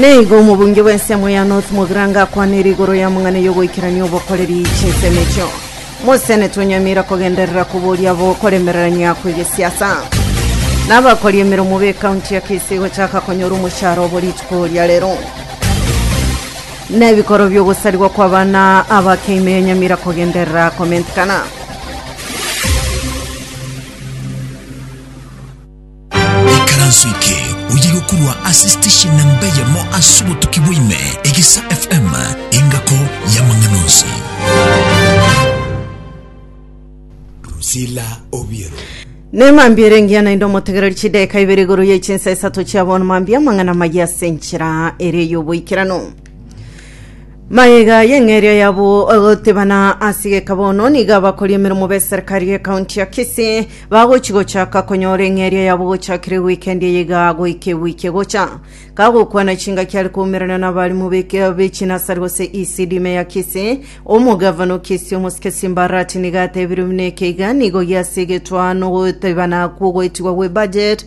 Nigo omobunge bw'ensemo ya North Mogrange akwanire igoro y'amang'ana y'ogoikerania obokoreri chinsemo echio. Mosenete onyamira kogenderera koboria abo koremererania kw'egesiasa. Nabakori emeromo b'ekaunti ya Kisii gochaka konyora omoshara obo rituko ria rero. Nebikoro bi'ogosarigwa kw'abana abakeime yanyamira kogenderera komentekana. Ekaranso eke oye gokurwa ase station namba eyemo ase obotuki bwaime egesa FM engako y'amang'ana onsi. Rusila Obiero. Ne mambia ere engiya naende omotegereri chideka ibere igoro ye chinsa isato chia bono mambia amang'ana maya ase enchera ere y'oboikeranu Mayega y'eng'eria yabo ogotebana ase geka bono nigo abakori emeremo b'eserikari y'ekaunti ya Kisii bagochi gochaka konyora eng'eria yabo gochakire wikendi eye iga goika ewiki egocha. Kagokwana chingaki are koumerana n'abarimu b'eke- b'echinasari gose ECD ime ya Kisii, omogavana o Kisii omosike Simba Arati nigo atebirie buna eke iga nigo giase egetwaa nogotebana kw'ogoetigwa gwe budget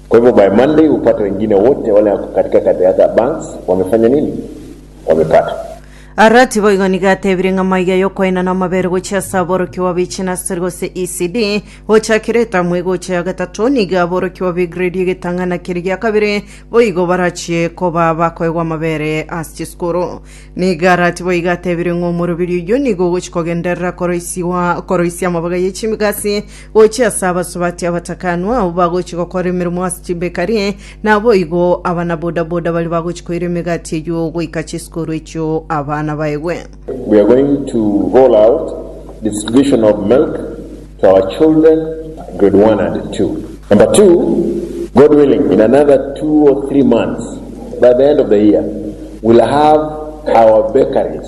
Kwa hivyo by Monday upate wengine wote wale wako katika the other banks wamefanya nini? Wamepata. Arati boigo nigo atebire ng'a maiga y'okoenana amabere gochia ase aborokigwa be chinasiri gose ECD gochakire etamu egocha ya gatato nigo aborokigwa be gredi egetang'ana keria gia kabere boigo barachie koba bakoegwa amabere ase chisukuru. Nigo Arati boigo atebire ng'a omoroberio oyio nigo ogochia kogenderera koroisigwa koroisia amabaga ye chimigasi Gochia ase abasubati abatakanwa abwo bagochia gokora emeremo ase chibekari, naboigo abana bodaboda baria bagochia koira emegati eyio goika chisukuru echio abana baegwe. We are going to roll out distribution of milk to our children, grade one and two. Number two, God willing, in another two or three months, by the end of the year, we'll have our bakeries.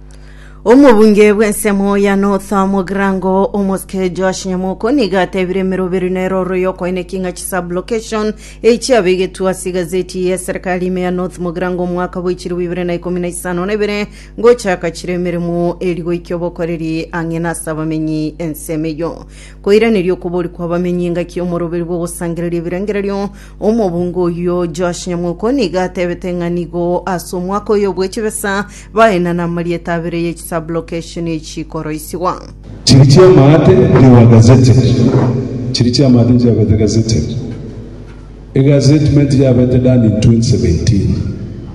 omobunge bw'ensemo ya north mogirango omosike josh nyamoko nigo atebire emeroberi na eroro y'okoeneki ng'a chisublocation eyi chiabegetwe ase egazeti ya eserikali ime ya north mogirango omwaka bw'echiro bibere na ikomi na isano na ibere gochaka chire emeremo eri goikia obokoreri ang'e na ase abamenyi ensemo eyo koiraneria okobori kw'abamenyi engaki y'omoroberi bw'ogosangereria ebirengererio Omobunga oyio Joash nyamoko nigo atebete ng'a nigo ase omwaka oyo bwe chibesa baenana amarieta abere ye chisublocation echi koroisigwa. Chiri chi'amaate you were gazetted Chiri chi'amaate chiabete gazetted Egazetment yabete done in 2017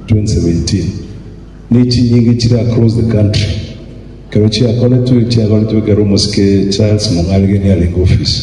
2017 Nechinyinga echire across the country ekero chiakoretwe chiakoretwe ekero omosike Charles Mong'aregeni arenge ofisi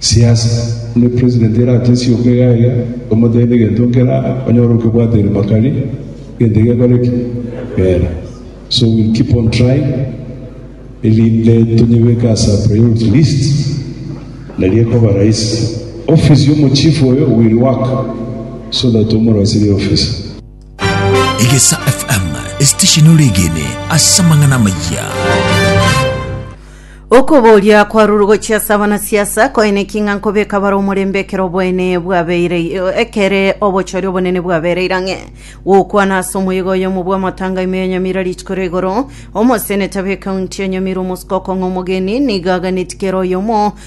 Siasa, onye president ere atiesie oka iga iga, omotebi egento nkera, onyore okebwate ribaga ri gento gekore ki? Kera. So we keep on trying erinde tonyebeke ase a priority list, naria ekoba rahisi. Office ya omochief oyo will work so that omorosirie office. Egesa FM, esitesheni ore egene ase amang'ana amayia. Okoboria kwarure gochia ase abanasiasa koeneki ng'a nkobeka bare omorembe ekero oboene bwabeire ekere obochori obonene bwabereire ang'e. Gokwana ase omoyega oyomo bw'amatanga ime yanyamire rituko ria igoro, omoseneta b'ekaunti yanyamirwe omosiko okong'a omogeni, nigo aganeti kera oyomo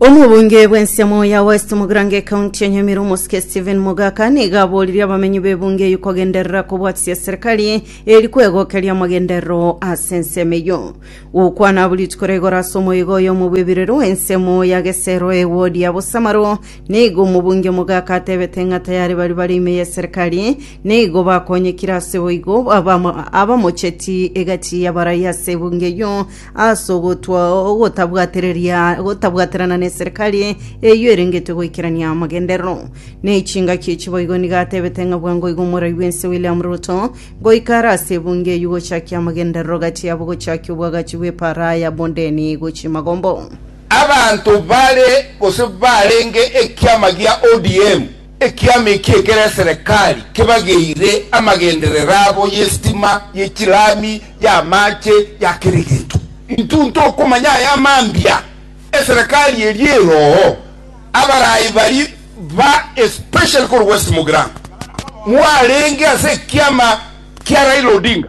Omobunge bw'ensiamo ya West Mugrange ekaunti ya Nyamira omosike Stephen Mogaka niga aboririe abamenyi b'ebunge eyio kogenderera kobwatisia eserikali eri kwegokeria amagenderero ase ensemo eyio. Gokwana abwo rituko ria igoro ase omoigo oyomo bw'ebirero w'ensemo ya Gesero ewodi ya Bosamaro nigo omobunge Mogaka atebete ng'a tayari bari bare ime y'eserikali nigo bakonyekire ase boigo abamo- abamocheti egati y'abarai ase ebunge eyio ase ogotwa ogotabwatereria gotabwaterana neserikari eyio erengetwe goikerania amagenderero na echingaki echi boigo nigo atebete ng'a bwango igo omorai bwense William Ruto goika are ase ebunge eyio gochakia amagenderero gati yabo gochakia obwagachi bw'epaara ya Bondeni gochia Magombo. Abanto bare gose barenge ekiama gia ODM Ekiama ekia ekero eserekari kebageire amagenderero abo y'esitima, y'echilami, y'amaache, ya kera egento. Intwe ntokomanya aya mambia, eserekari eria erooo, abaraai bari ba especially korwa West Mugirango, mwarenge ase ekiama kia Raila Odinga.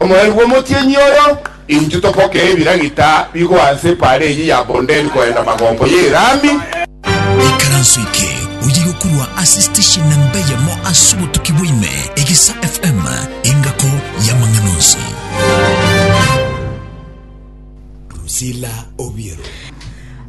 Omoerio bw'omotienyi oyo, intwe topokee ebiragita bigwa anse epaara eye ya Bondeni koenda magombo ye Irami. Ikaranso eke oye yokorwa ase station namba eyemo ase obotuki bwa ime, Egesa FM, engako y'amang'ana onsi. Drusilla Obiero.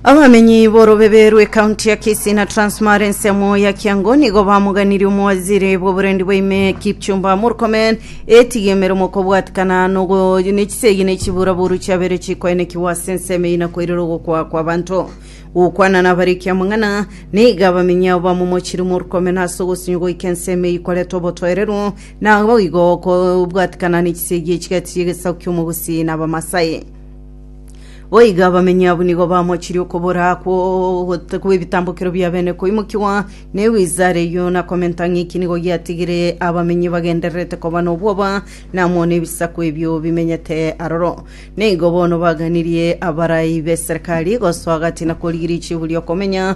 Abamenyi borobebe rw'ekaunti ya Kisii na Transparency amo ya Kiango nigo bamoganirie omowaziri bw'oborendi bwa ime Kipchumba Murkomen etige emeremo okobwatikana nogo nechisegi nechibura boru chiabere chikoenekigwa ase ensemo eyina koirera ogokwa kwa abanto gokwana nabariki amang'ana niga abamenyi abo bamomochiri Murkomen ase ogosinyo goika ensemo eyi koreta obotoereru Naboigo kobwatikana nechisegi echigati chi'egesaku ki'omogusi n'Abamasai. Boigo abamenyi abwo nigo bamochirie okobora kw'ebitambokero bia bene koimokigwa negwizara eyio na komenta ng'iki nigo giatigire abamenyi bagendererete koba nobwoba namo nebisaku ebio bimenyete aroro. Neigo bono baganirie abarai b'eserekari gosoa gati na korigiria chiburi okomenya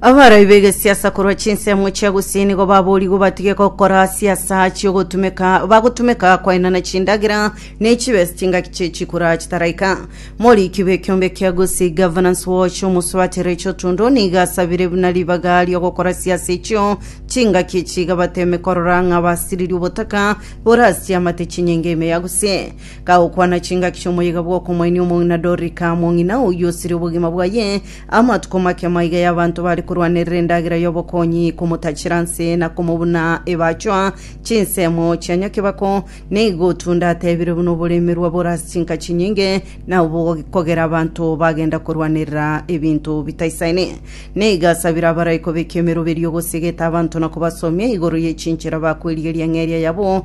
Abarai b'egesiasa korwa chinsemo chia gusii nigo baboorigwe batige gokora siasa chi'ogotumeka bagotumeka kwaenana chindagera na echibesa chingaki chie chikura chitaraika. Moriki bw'ekiombe kia Gusii Governance Watch omosubati Rachel Tundo nigo asabire buna ribaga ri'ogokora siasa echio chingaki echi iga bateme korora ng'a basiririe obotaka borasiamate chinyinga ime ya Gusii. Kagokwana chingaki chi'omoyega bw'okomoenia omong'ina Dorika mong'ina oyio osirie obogima bwaye Amatuko make maiga y'abanto bare korwanerera endagera y'obokonyi, komotachera nse na komobuna ebachwa chinsemo chia nyakebako, nigo Tunda atebire buna oboremerwa bore ase chinka chinyinge na obokogera abanto bagenda korwanerera ebinto bitaisaine. Nigo asabire abaraiko b'ekemeroberi ogosegeta abanto na kobasomia igoro ye chinchera bakwerigeria ng'eria yabo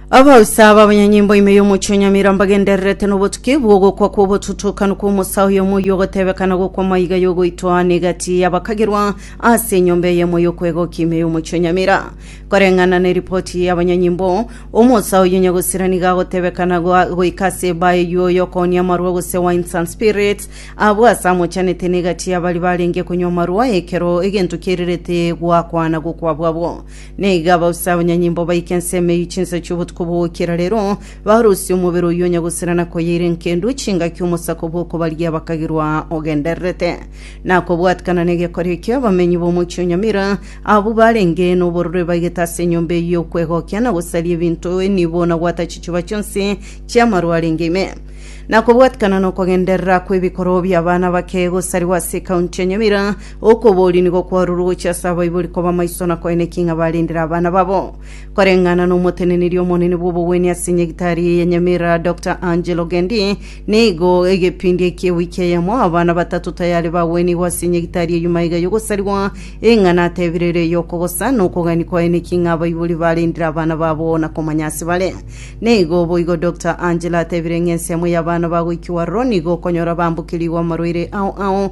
Abaoisa ab'abanyanyimbo ime y'omochie o Nyamira mbagendererete n'obotuki bw'ogokwa kw'obotutokanu kw'omosa oyomo oyio ogotebekana gokwa maiga y'ogoitwa aane egati y'abakagirwa ase enyomba eyemo y'okwegokia ime y'omochie o Nyamira. Koreng'ana neripoti y'abanyanyimbo, omosa oyio nyagosira nigo agotebekana goa- goika ase ebaa eyio y'okoonia amarwa gose wines and spirits abwo ase amochanete n'egati y'abari barenge konywa amarwa ekero egento kierirete goakwana gokwa bwabo. Niga bosa abanyanyimbo baika ensemo eyio chinsa chi'obotuko bw'ogokira rero, barusia omobere oyio onya gosira na koyeira enkendu chingaki omosako bw'okobaria bakagirwa ogendererete. Na kobwatikana n'egekora ekio, abamenyi b'omochie o Nyamira, abwo barenge n'oborore baigete ase enyomba eyio y'okwegokia na gosaria ebinto, enibo na gwata chichuba chionsi chi'amaru arenge ime. Na kobwatikana n'okogenderera kw'ebikoroo bi'abana bake gosarigwa ase ekaunti ya Nyamira, Okoboria nigo kwarorwe gochia ase abaibori koba amaiso na koyena eki ng'a barendire abana babo. Koreng'ana n'omoteneneri omonene bw'obogwenia ase nyagitari eye ya Nyamira, Doctor Angel Ogendi, nigo egepindi ekie wiki eyemo abana batato tayari bagwenigwe ase nyagitari eyio maiga y'ogosarigwa, eng'ana atebire ere y'okogosa na okogania koyena eki ng'a abaibori barendire abana babo na komanya ase bare. Nigo boigo Doctor Angel atebire ng'a ensemo y'abana bagoikigwa aroro nigo okonyora bambokirigwe amarwaire ao ao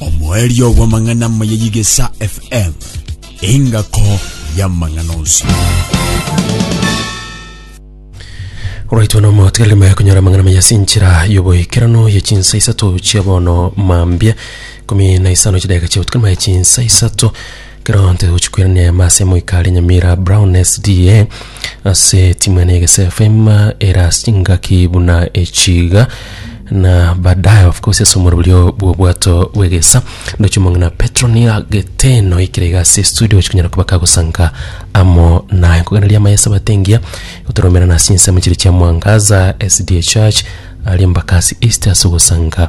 Omoerio bw'amang'ana amaya y'Igesa FM, engako y'amang'ana onsi. Oraitwa na omotiga rima yakunyora amang'ana maya sinchira yoboikerano ye chinsa isato chia bono mambia kumi na isano chidageka chia obutuku rima ya chinsa isato Ekero ntogochia koirana eema ase Moika are Nyamira Brown SDA ase timu ene Egese FM ere ase chingaki buna echi iga na baadaye of course ase omoroberio bw'obwato bw'egesa ndoche omong'ina Petro niga geteno ikire iga ase studio gochia konyara koba kagosanka amo naye nkoganeria amaye ase abatengia gotoromera na ase insemo chire chia mwangaza SDA Church aria Embakasi East ase ogosanka